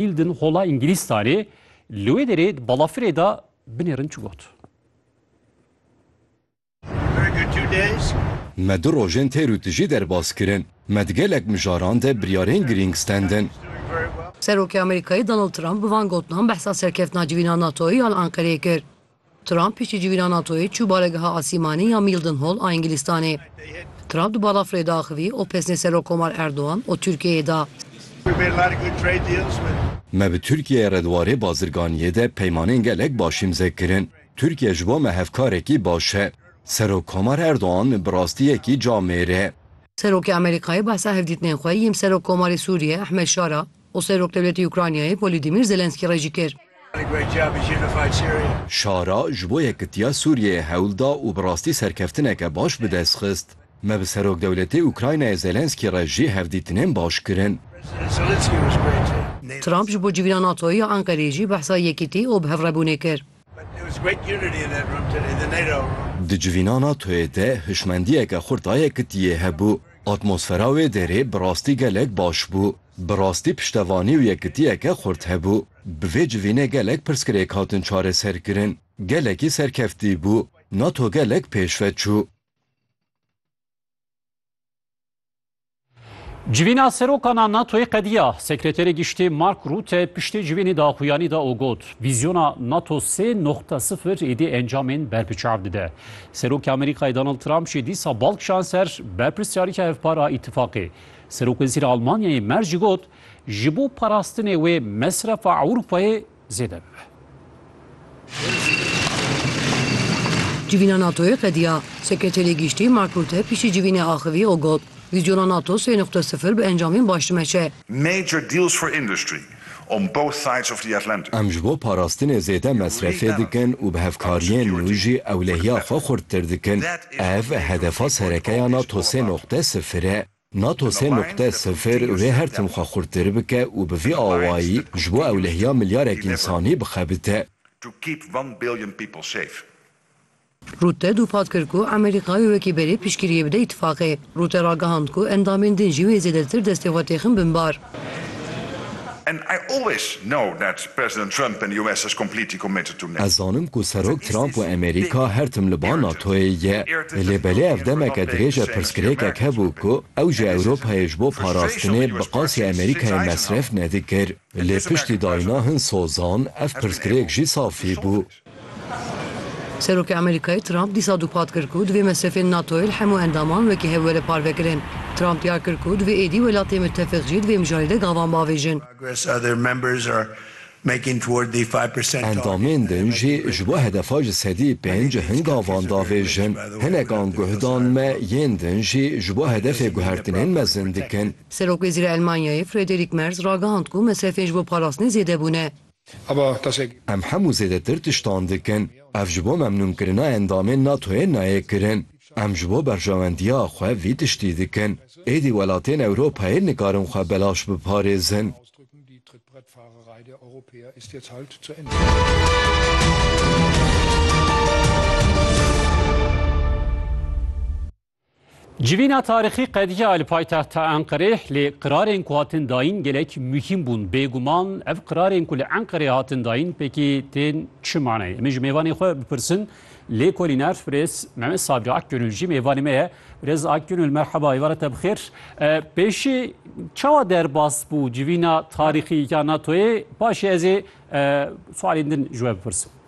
Hilden Hola Îngilîzstanê li wê derê di balafirê de binêrin çi got. Me du rojên têr û tijî derbas kirin. Me di gelek mijaran de biryarên girîng stendin. Serokê Amerîkayê Donald Trump bi van gotinan behsa serkeftina civîna NATO'yê ya li Anqereyê kir. Trump piştîcivîna NATO'yê çû baregeha asîmanî ya Mildenhall a Îngilîstanê. Trump di balafirê de axivî û pesnê Serokkomar Erdogan û Tirkiyeyê da. Me bi Tirkiyeyê re di warê bazirganiyê de peymanên gelek baş îmze kirin. Tirkiye ji bo me hevkarekî baş e. Serokkomar Erdogan bi rastî yekî camêr e. Serokê Amerîkayê behsa hevdîtinên xwe yêm Serokkomarê Sûriyê Ehmed Şara û Serokwdewletî Ukraynayê Volodymyr Zelensky re jî kir. Şara ji bo yekitiya Sûriyeyê hewl da û bi rastî serkeftineke baş bi dest xist. Me bi Serokwdewletê Ukraynayê Zelensky re jî hevdîtinên baş kirin. Trump ji bo civîna NATO'yê ya Enqereyê jî behsa yekitî û bihevrebûnê kir. Di civîna NATO'yê de hişmendiyeke xurta yekitiyê hebû. Atmosfera wê derê bi rastî gelek baş bû. Bi rastî piştevanî û yekitiyeke xurt hebû. Bi vê civînê gelek pirsgirêk hatin çareserkirin. Gelekî serkeftî bû. NATO gelek pêşve çû. Civîna serokana NATOyê qediya. Sekreterê Giştî Mark Rûte piştê civînê daxuyanî da û got, Vîzyona NATO sê noqta sifir êdî encamên ber bi çav dide. Serokê Amerîkayê Donald Trump jî dîsa bal kişand ser berpirsyarîka hevpar a îtîfaqê. Serokwezîra Almanyayê Merz jî got, Ji bo parastinê wê mesrefa Ewropayê, zêde bibe. Civîna NATOyê qediya. Sekreterê Giştî Mark Rutte piştî civînê axivî û got, Vîzyona NATO sê nuqte sifir bi encamên baş dimeşe. Em ji bo parastinê zêde mesrefê dikin û bi hevkariyên nû jî ewlehiya xwe xurttir dikin. Ev hedefa sereke ya NATO sê nuqte sifir e. Nato sê nuqte sifir wê her tim xwe xurttir bike û bi vî awayî ji bo ewlehiya milyarek însanî bixebite. Rûte dûphat kir ku Amerîka wê wekî berê piştgiriyê bide îtîfaqê. Rûte ragihand ku endamên din jî wê zêdetir destê xwe têxin bin bar. Ez zanim ku Serok Trump û Amerîka her tim li ba NATO'yê ye. Lê belê ev demeke dirêj e pirsgirêkek hebû ku ew ji Ewropayê ji bo parastinê bi qasî Amerîkayê mesref nedikir. Lê piştî dayîna hin sozan ev pirsgirêk jî safî bû. Serokê Amerîkayê Trump dîsa dûpat kir ku divê mesrefên NATOyê li hemû endaman wekî hev were parvekirin. Trump diyar kir ku divê êdî welatên mitefîq jî di vê mijarê de gavan bavêjin. Endamên din jî ji bo hedefa ji sedî pênc hin gavan davêjin. Hinekan guhdan me yên din jî ji bo hedefê guhertinên mezin dikin. Serokwezîra Elmanyayê Friederîk Merz ragihand ku mesrefên ji bo parastinê zêde bûne. Em hemû zêdetir tiştan dikin. Ev ji bo memnûnkirina endamên NATO'yê nayê kirin. Em ji bo berjewendiya xwe vî tiştî dikin. Êdî welatên Ewropayê nikarin xwe belaş biparêzin. Civîna tarîxî qediya li paytexta Enqerê lê qirarên ku hatin dayîn gelek muhîm bûn. Bêguman ev qirarên ku li Enqerê hatin dayîn pêkî tên çi manayê? Em ê ji mêvanê xwe bipirsin. Lêkolîner birêz Mehmet Sabri Akgönül jî mêvanê me ye. Birêz Akgönül merheba êvar te bixêr. Pêşî çawa derbas bû civîna tarîxî ya NATOyê? Paşê ez ê sualên din ji we bipirsim.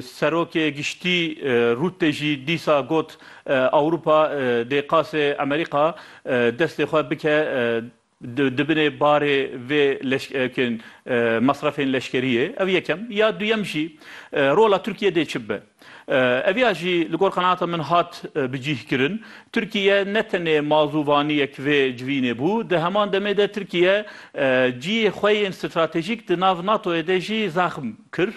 Serokê Giştî Rûttê jî dîsa got Ewropa dê qasê Amerîka destê xwe bike di binê barê vê mesrefên leşkeriyê. Ev yekem. Ya duyem jî rola Tirkiyê dê çi bibe? Ev ya jî li gor qenaata min hat bicîhkirin. Tirkiye ne tenê mazûvaniyek vê civînê bû, di heman demê de Tirkiye ciyê xwe yên stratejîk di nav NATO'yê de jî zaxm kir.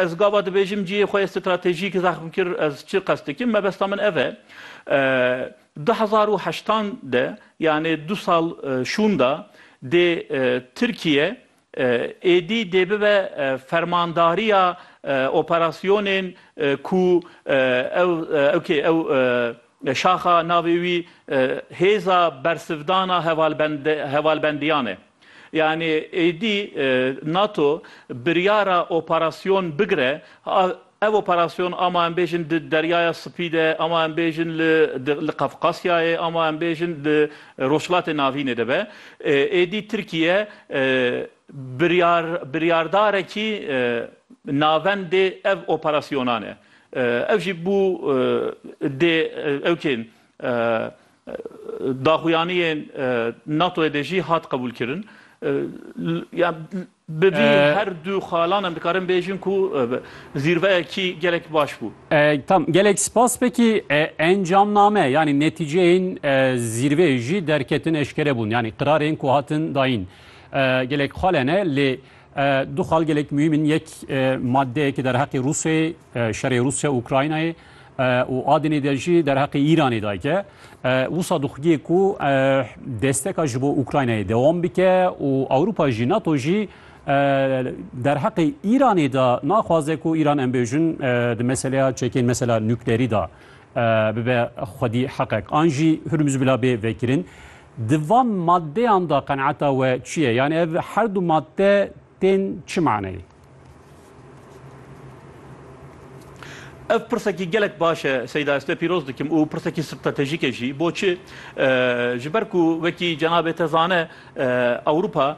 Ez gava dibêjim cihê xwe yê stratejîk zexm kir, ez çi qest dikim? Mebesta min ev e. Du hezar û heştan de yanê du sal şûnda dê Tirkiye êdî dê bibe fermandariya operasyonên ku ew ew kê ew Şaxa navê wî Hêza Bersivdana Hevalbendiyan e. Yanî êdî NATO biryara operasyon bigire, ev operasyon ama em bêjin di Deryaya Spî de, ama em bêjin li Qafqasyayê, ama em bêjin li Rojhilatê Navînê de be. Êdî Tirkiye biryardarekî navendê ev operasyonan e. Ev jî bû dê ewkên daxuyaniyên NATO'yê de jî hat qebûlkirin. Bi vî her du xalan em dikarin bêjin ku zîrveyekî gelek baş bû. Tam gelek spas pekî encamname yanî netîceyên zîrveyê jî derketin eşkere bûn. Yanî qirarên ku hatin dayîn gelek xalene lê Du xal gelek muhîm in. Yek maddeyeke derheqê Rûsyayê, şerê Rûsya û Ukraynayê û adinê de jî derheqê Îranê dayke. Wisa dixwîye ku desteka ji bo Ukraynayê dewam bike û Ewropa jî NATO jî derheqê Îranê de naxwaze ku Îran em bêjin di meseleya çekên mesela nuklerî de bibe xwedî heqek. An jî Hurmuz bila bê vekirin. Di van maddeyan de qenaeta we çi ye? Yanî ev her du madde tên çi maneyê? Ev pirsekî gelek baş e Seyda ez tu yê pîroz dikim û pirsekî stratejîk e jî. Boçi? Ji ber ku wekî cenabê te zane Ewropa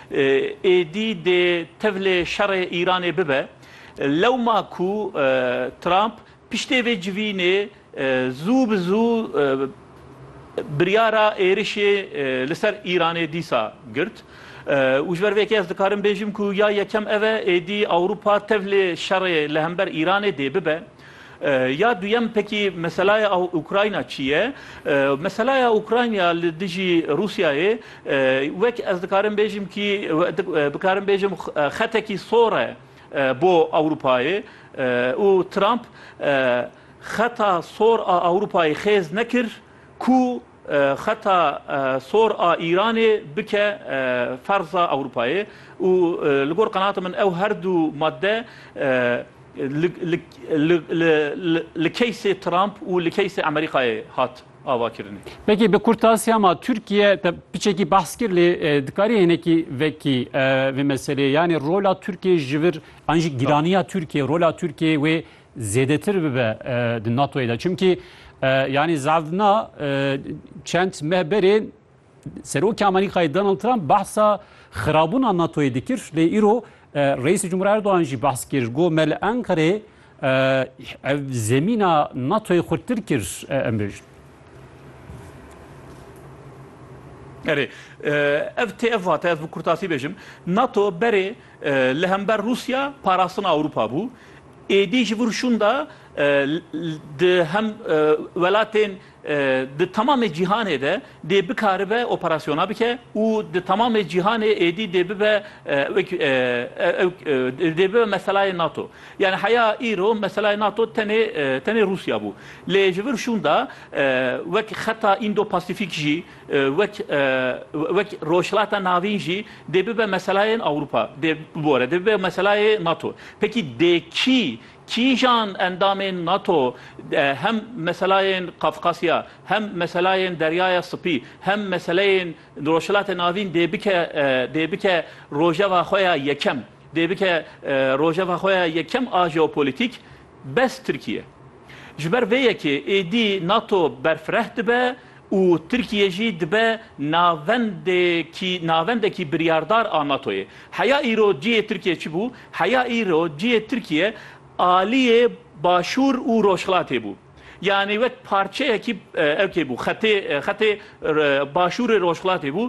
Êdî dê tevlê şerê Îranê bibe. Lewma ku Trump piştê vê civînê zû bi zû biryara êrişê li ser Îranê dîsa girt û ji ber vê yekê ez dikarim bêjim ku ya yekem ev e, êdî Ewropa tevlê şerê li hember Îranê dê bibe. Ya duyem pekî meselaya Ukrayna çi ye? Meselaya Ukrayna li dijî Rûsyayê wek ez dikarim bêjim kî bikarim bêjim xetekî sor e bo Ewropayê û Trump xeta sor a Ewropayê xêz nekir ku Xeta sor a Îranê bike ferza Ewropayê û li gor qenaata min ew her du madde li keysê Trump û li keysê Amerîkayê hat avakirinê. Peki bi kurtasiya ma Tirkiye te piçekî behs kir lê dikarî hinekî vekî vê meseleyê yanî rola Tirkiyê ji vir an jî gîraniya Tirkiyê rola Tirkiyê wê Zêdetir bibe di NATO'yê de. Çimkî yanî zaldina çend meh berê Serokê Amerîkayê Donald Trump behsa xirabûna NATO'yê dikir. Lê îro Reîsê Cumhurê Erdogan jî behs kir. Got me li Enqerê ev zemîna NATO'yê xurttir kir em bêjin. Erê, ev tê ev vate, ez bi kurtasî bêjim. NATO berê li hember Rûsya parastina Ewropa bû. Êdî ji vir şûnda di hem welatên di temamê cîhanê de dê bikaribe operasyona bike û di temamê cîhanê êdî dê bibe wek dê bibe meselayê nato. Yanî heya îro meselayê nato tenê tenê Rûsya bû. Lê ji vir şûnda wek xeta Îndo-Pasîfîk jî, Wek wek Rojhilata Navîn jî dê bibe meselayên Ewropa dê bibore, dê bibe meselayê NATO. Pekî dê kî, kîjan endamên NATO hem meselayên Qafqasya, hem meselayên Deryaya Sipî, hem meseleyên Rojhilatê Navîn dê bike dê bike rojeva xwe ya yekem, dê bike rojeva xwe ya yekem a jeopolitîk bes Tirkiye. Ji ber vê yekê êdî nato berfireh dibe û Tirkiye jî dibe navendekî navendekî biryardar a NATO'yê. Heya îro cihê Tirkiye çi bû? Heya îro cihê Tirkiye aliyê Başûr û Rojhilatê bû. Yanî wek parçeyekî ew kê bû, xetê xetê Başûrê Rojhilatê bû.